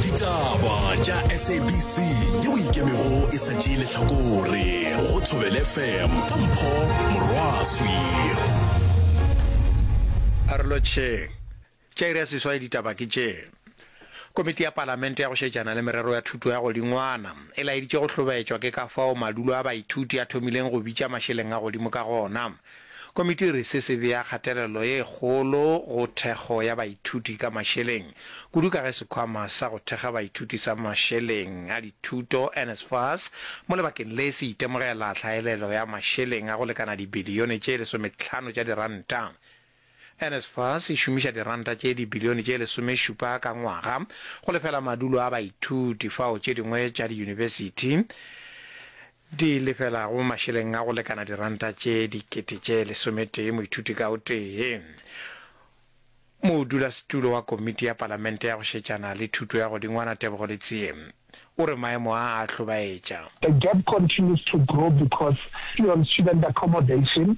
ditaba tša sabc ye o ikemego e sa tšee lehlakore go thobele fm ka mpho morwaswi pharolotšheng tša iri ya seswai ditaba ke tše komiti ya palamente ya go šetšana le merero ya thuto ya godingwana e laeditše go hlobaetšwa ke ka fao madulo a baithuti a thomileng go bitša mašeleng a godimo ka gona Komiti e re se se bea kgatelelo e kgolo go thekgo ya baithuti ka mašeleng, kudu ka ge sekhwama sa go thekga baithuti sa mašeleng a dithuto, NSFAS, mo lebakeng le se itemogela tlhaelelo ya mašeleng a go lekana dibilione tše lesometlhano tša diranta. NSFAS e šomiša diranta tše dibilione tše lesomešupa ka ngwaga go lefela madulo a baithuti fao tše dingwe tša diyunibesithi di lefelago mašeleng a go lekana diranta tše dikete tše lesometee moithuti ka o tee. Modulasetulo wa Komiti ya Palamente ya go Šetšana le Thuto ya Godingwana Tebogo Letsie o re maemo a a hlobaetša. The gap continues to grow because on student accommodation,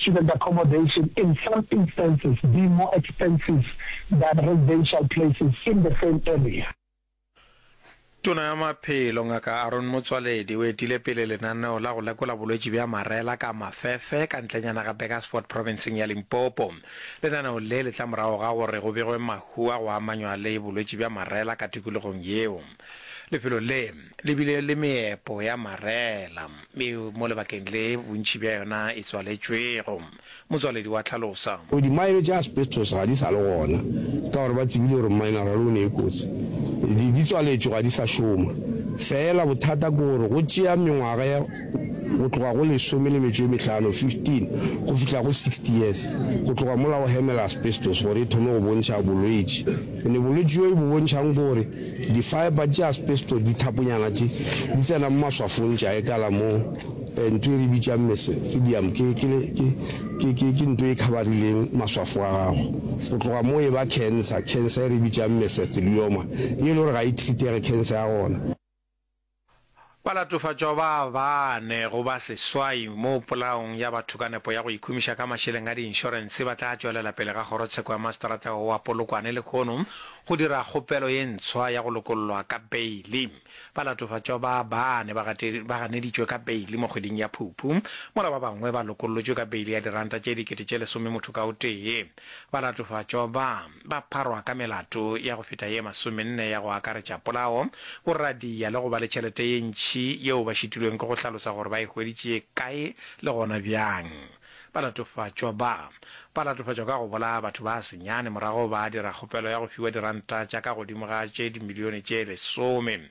student accommodation in some instances be more expensive than residential places in the same area. Tona ya Maphelo, Ngaka Aaron Motsoaledi, o etile pele lenaneo la go lekola bolwetši bja marela ka mafefe ka ntlenyana ga Burgersfort profenseng ya Limpopo. Lenaneo le le tla morago ga gore go begwe mahu a go amanywa le bolwetši bja marela ka tikologong yeo. Lefelo le le bile le meepo ya marela e mo lebakeng le bontši bja yona e tswaletšwego, motswaledi wa hlalosa. O Dimaene tša asbestos ga di sa le gona ka gore ba tsebile gore mineral o ne e kotsi. Di di tswaletšwe ga di sa šoma. Feela bothata ke gore go tšea mengwaga ya. go tloga go lesome le metšo e mehlano, 15, go fihla go 60 years, go tloga mola o hemela asbestos gore e thome go bontšha bolwetši. Ene bolwetši bjo e bo bontšhang ke gore di-fibre tša asbestos, dithaponyana tše, di tsena mo maswafong tša etala mo ntho e re bitšang mesothelium, ke, ke, ke, ke, ke, ke ntho e khabarileng maswafo a gago. Go tloga moo e ba cancer, cancer e re bitšang mesothelioma, ye e le gore ga e treatege cancer ya gona. Ba latofatšwa ba bane go ba seswai mo polaong ya batho ka nepo ya go ikhumiša ka mašeleng a diinšorense ba tla tšwelela pele ga kgorotsheko ya maseterata wa Polokwane lekhono go dira kgopelo ye ntshwa ya go lokollwa ka beili. Ba latofatšwa ba bane ba ganeditšwe ka beili mo kgweding ya Phuphu mola ba bangwe ba lokollotšwe ka beili ya diranta tše dikete tše lesome motho ka o tee. Ba latofatšwa ba. ba pharwa ka melato ya go feta ye masomenne ya go akaretša polao, go radiya le go ba le tšhelete ye ntši yeo ba šitilweng ke go hlalosa gore ba e hweditše kae le gona bjang. Ba latofatšwa ba ba latofatšwa ka go bolaya batho ba senyane morago ba dira kgopelo ya go fiwa diranta tša ka godimo ga tše dimilione tše lesome.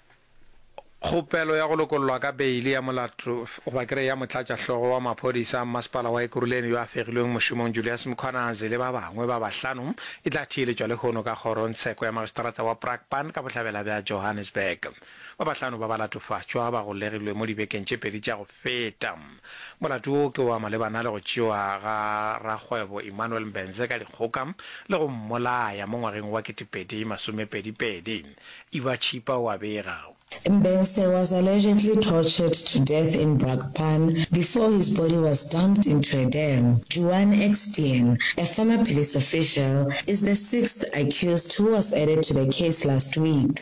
Kgopelo ya go lokollwa ka beili ya molato goba ke re ya motlatšahlogo wa maphodisa a mmasepala wa Ekurhuleni yo a fegilweng mošomong Julius Mkhwanazi le ba bangwe ba bahlano e tla theeletšwa lehono ka kgorongtsheko ya magistrata wa Brakpan ka bohlabela bja Johannesburg. Ba bahlano ba ba latofatšwa ba golegilwe mo dibekeng tše pedi tša go Feta. Molato wo ke wa malebana le go tšewa ga rakgwebo Emmanuel Mbenze ka dikgoka le go mmolaya mo ngwageng wa ketepedi masomepedi pedi, Eva Chippa o a bega. Mbenze was allegedly tortured to death in Brakpan before his body was dumped into a dam. Juan Extien, a former police official, is the sixth accused who was added to the case last week.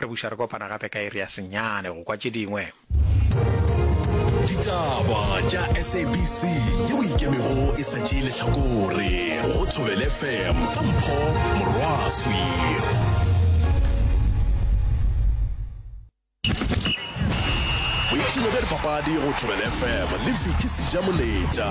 Re buša re kopana gape ka iri ya senyane go kwa tše dingwe. Ditaba tša SABC yeo e ikemego e sa tšee lehlakore go Thobele FM ka Mpho Morwaswi. Boipshino bja dipapadi go Thobele FM le Vicky Sejamoletša.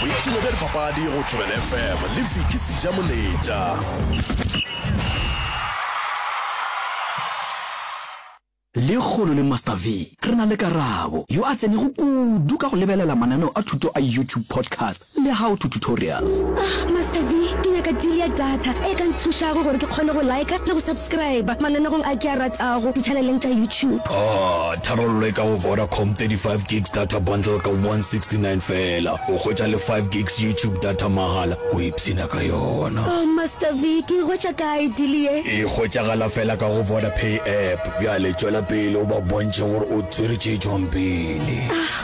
boipshino bja dipapadi go tobel fm le viki seja moletša le kgolo le master v re na le karabo yo a tsenego kudu ka go lebelela mananeo a thuto a youtube podcast Le how to tutorials. Ah Master V, ke nyaka deal ya data e ka nthušago gore ke kgone go liker le go subscriber mananegong a ke a ratago di-channeleng tša YouTube. Ah, tharollo e ka go Vodacom, 35 gigs data bundle ka 169 feela, o hwetša le 5 gigs YouTube data mahala, o ipshina ka yona. Oh Master V, ke e hwetša kae deal ye? E hwetšagala feela ka go Vodapay app. Bjale tšwela pele o ba bontšhe gore o tswere tše e tšwang pele. Ah,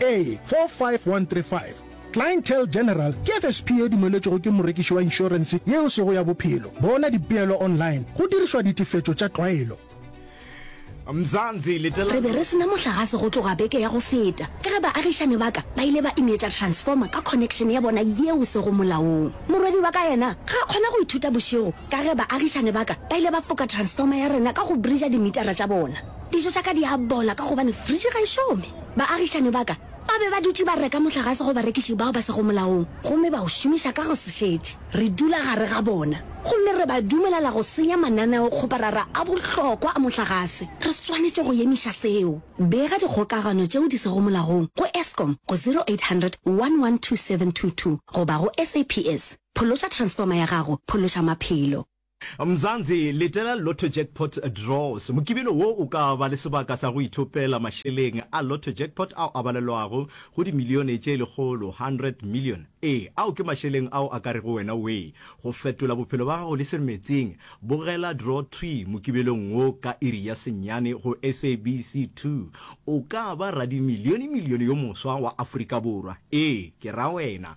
A45135 Clientele General ke FSP e dumeletšwego ke morekiši wa inšorense ye e sego ya bophelo. Bona dipeelo online go dirišwa ditefetšo tša tlwaelo. Re be re se na mohlagase go tloga beke ya go feta ka ge baagišani ba ka ba ile ba ineetša transformer ka connection ya bona ye e sego molaong. Morwedi wa ka yena ga a kgona go ithuta bošego Ka ge baagišane ba ka ba ile ba foka transformer ya rena ka go brija dimitara tša bona, dijo tša ka di a bola ka gobane fridge ga e šome. Baagišane ba ka ba be ba dutše ba reka mohlagase go barekiši bao ba sego molaong gomme ba o šomiša ka go se šetše. Re dula gare ga bona gomme re ba dumelela go senya mananeokgoparara a bohlokwa a mohlagase. Re swanetše go emiša seo. Bega dikgokagano tšeo di sego molaong go Eskom go 0800 112722 goba go SAPS. Phološa transformer ya gago, phološa maphelo. Mzansi, letela Lotto Jackpot Draws. Mokibelo wo o ka ba le sebaka sa go ithopela mašeleng a Lotto Jackpot ao a balelwago go dimilione tše lekgolo, 100 million. Ee, ao ke mašeleng ao a ka rego wena wee! Go fetola bophelo ba gago le Seremetseng, bogela Draw Thwi mokibelong wo ka iri ya senyane go SABC 2. O ka ba radimilionemilione yo moswa wa Afrika Borwa. Ee, ke ra wena!